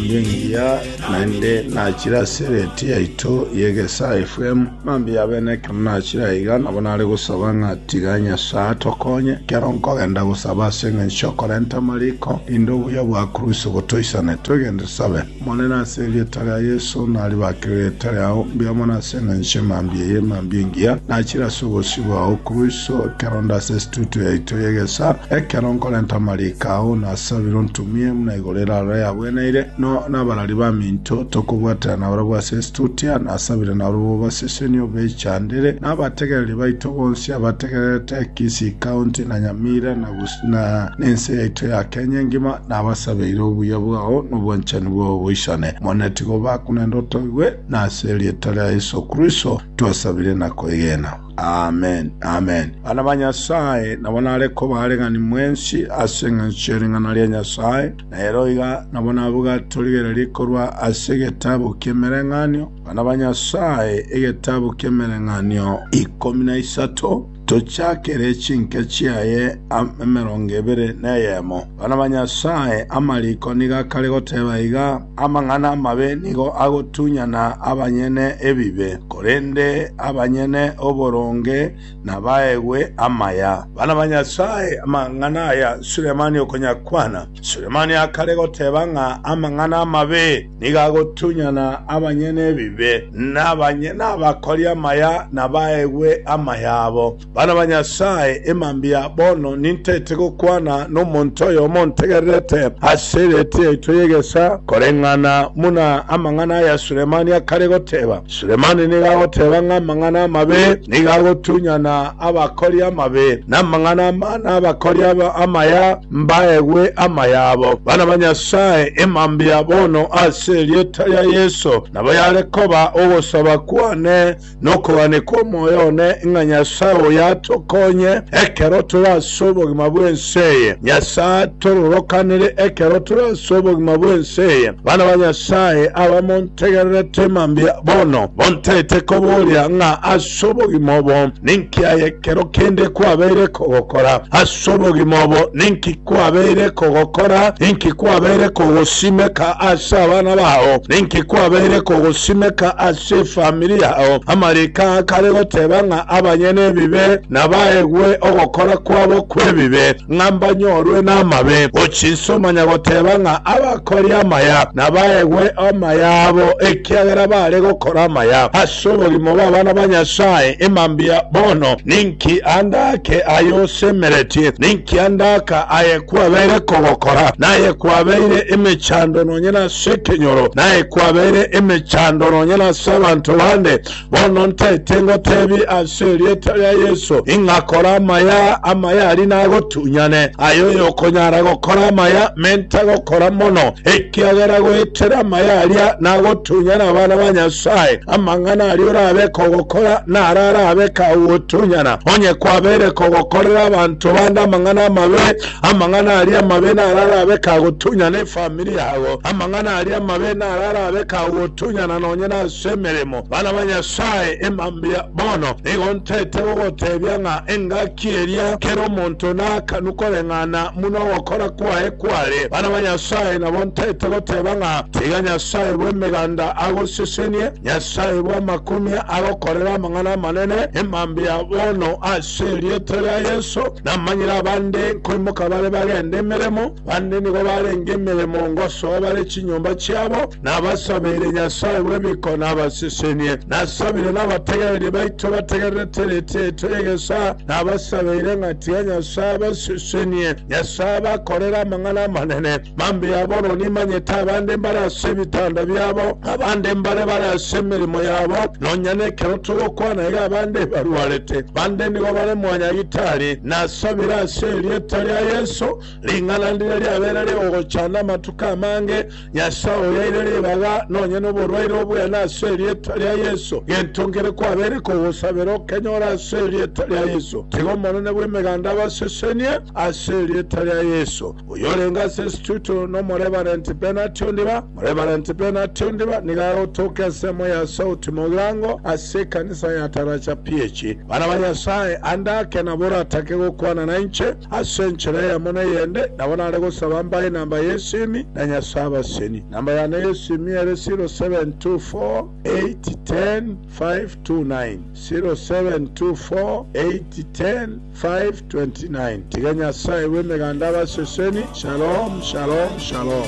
Inche ngiya naende nachire ase eredii yaito y'egesaa FM, mambia y'abene ekero nachire aiga nabo nare gosaba ng'a tiga Nyasae atokonye ekero nkogenda gosaba ase engencho y'okorenta amariko, rinde obuya bwa Kurusi botoisane. Twegende tosabe. Omonene, ase erieta ria Yeso, naribakere erieta riao mbuya mono ase engencho ye mambia eye. Mambia engiya nachire ase obosio bwao Kurusi, ekero onde ase estudio yaito y'egesaa, ekero nkorenta amariko ao, nasabire ontumie buna Korende aroro yagwenaire, no nabarari baminto tokobwatera nabarabwo ase Estutia, nasabire nabarabwo basesenie obechandere, na abategereri baito bonsi abategererete Kisii County, na Nyamira, na gus, na nense yaito ya Kenya engima, nabasabeire obuya bwao na obwanchani bwao boisane. Omone tiga obakunende otoigwe, na ase erieta ria Yeso Kristo twasabire na koegena. Amen, amen. Bana ba Nyasae, nabo nare koba aregani mwensi ase engencho ye ring'ana ria Nyasae, na ero iga nabo nabuga torigererie korwa ase egetabu ki'Emereng'anio, Bana ba Nyasae, egetabu ki'Emereng'anio ikomi na isato, tochakere chinke chiaye emerongo ebere neyemo. Bana ba Nyasae, amariko nigo akare goteba iga, Amang'ana amabe nigo agotunyana abanyene ebibe, korende abanyene oboronge nabaegwe amaya. Bana ba Nyasae, amang'ana aya Sulemani okonyakwana. Sulemani akare goteba ng'a amang'ana amabe nigo agotunyana abanyene ebibe, na abanyene abakori amaya nabaegwe amayabo. Bana ba Nyasae, emambia bono nintaete gokwana nomonto oyomo ontegererete ase ereeti yaito y'egesaa, koreng'ana buna amang'ana aya Sulemani akare goteba. Sulemani nigo agoteba ng'a amang'ana amabe nigo agotunyana abakori amabe, na amang'ana amana abakori amaya mbaegwe amayabo. Bana ba Nyasae, emambia bono ase erieta ria Yeso, nabo yare koba ogosaba kwane. Nokogania kw'omoyo one ng'a Nyasae oyo atokonye ekero tore ase obogima bw'ense eye. Nyasae atororokanere ekero tore ase obogima bw'ense eye. Bana ba Nyasae abamontegererete mambia bono, montagete kobooria ng'a ase obogima obo ninki aye ekero kende kwabeire kogokora? Ase obogima obo ninki kwabeire kogokora? Ninki kwabeire kogosimeka ase abana bao? Ninki kwabeire kogosimeka ase efamiri yao? Amariko aa kare goteba ng'a abanyene ebibe nabaegwe ogokora kwabo kw'ebibe, ng'a mbanyorwe namabe. Ochinsa omanya goteba ng'a abakori amaya nabaegwe amaya abo ekiagera baare gokora amaya. Somorimo bw'abana ba Nyasae, Ema mbuya bono! Ninki ande ake aye osemeretie? Ninki ande aka aye kwabeire kogokora? Naye kwabeire emechando nonye nase ekenyoro, naye kwabeire emechando nonye nase abanto bande. Bono ntaete ngoteebie ase erieta ria Yeso, ing'a kora amaya, amaya aria nagotunyane. Aye oyokonyara gokora amaya, menta gokora mono. Ekiagera goetera amaya aria nagotunya nabana ba Nyasae, amang'ana aria orabe kogokora naro arabe kagotunyana. Onye kwabeire kogokorera abanto bande amang'ana amabe, amang'ana aria amabe naro arabe kagotunyana efamiri yabo. Amang'ana aria amabe naro arabe kagotunyana nonye nase emeremo. Bana ba Nyasae, emambia bono nigo ntete gogotebia ng'a engaki Ki eria kera omonto naakanu koreng'ana buna ogokora kwaye kware, bana ba Nyasae nabo ntaete goteba ng'a tiga Nyasae bw'emeganda agosesenie, Nyasae bw'amakumia agokorere amang'ana amanene emambia bono ase erieta ria Yeso. Namanyire abande nkoimoka bare bagende emeremo, bande nigo barenge emeremo ngosoa bare chinyomba chiabo. Nabasabire Nyasae bw'emikono abasesenie. Nasabire nabategereria baito bategererete ritiaito y'egesaa. Nabasabeire ng'a tiga Nyasae abasesenie. Nyasae abakorere amang'ana amanene. Mambia bono nimanyete abande mbare ase ebitanda biabo, abande mbare bare ase emeremo yabo, nonya nekero togokwana iga abande barwarete, bande nigo bare mwanyagitari. Nasabire ase erieta ria Yeso, ring'ana ndiria riabeire ri'ogochanda amatuko amange, Nyasae oyaire ribaga nonya noborwaire oboyana ase erieta ria Yeso, gento nkere kwabeire kogosabera okenyore ase erieta ria Yeso. Tiga Omonene bw'Emeganda abasesenie ase erieta ria Yeso. Oyorenge ase Instituto n'Omoreverenti Bernard Ondiba. Moreverenti Bernard Ondiba nigo agotokia ensemo ya Sauti Mogirango ase ekanisa ya Taracha PH. Bana ba Nyasae, ande ake nabo oratake gokwana nainche. Ase enchera eyemo na eyende, nabo nare gosaba mbae namba y'esimi na Nyasae abaseni. Namba yane y'esimi ere 0724810529, 0724810529. Tiga Nyasae bw'Emeganda abaseseni. Shalom, shalom, shalom.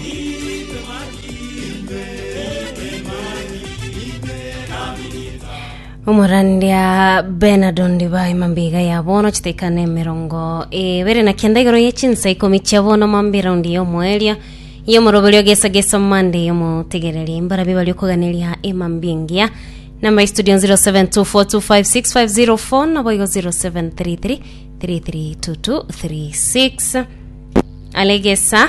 Omorandia Bernard Ondiba emambia ya bono chidaika nemerongo ebere na kenda igoro ye chinsa ikomi chia bono mambia eraundi y'omoerio y'omoroberio gesa gesa mande y'omotegereri mbarabia bari okoganeria emambia engiya namba ya studio 0724256504 naboigo 0733332236 alegesa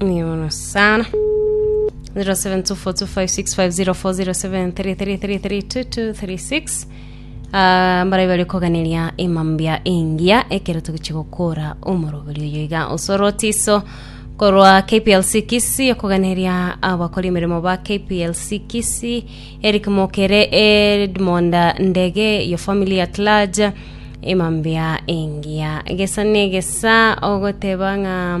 Mbuya mono sana. 072425650433332236 Ah, mbarai bari koganeria imambia engiya ekero togochia gokora omorobori oyo iga osorotiso korwa KPLC Kisi okoganeria abakora emeremo ba KPLC Kisi Eric Mokere Edmond Ndege your family at large imambia engiya gesa negesa ogoteba ng'a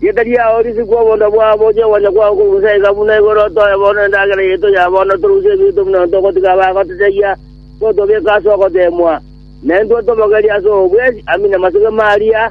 Rieta riao risikwe obonda bwao, bochie ogocha kwao koguse aiga buna igoro, toe bono endagera yaito ya bono, torusie ebiito buna togotiga abagototebia, totobeke ase ogoteemwa, na intwe tobogerie ase obobwesi, amin' amasegema aria.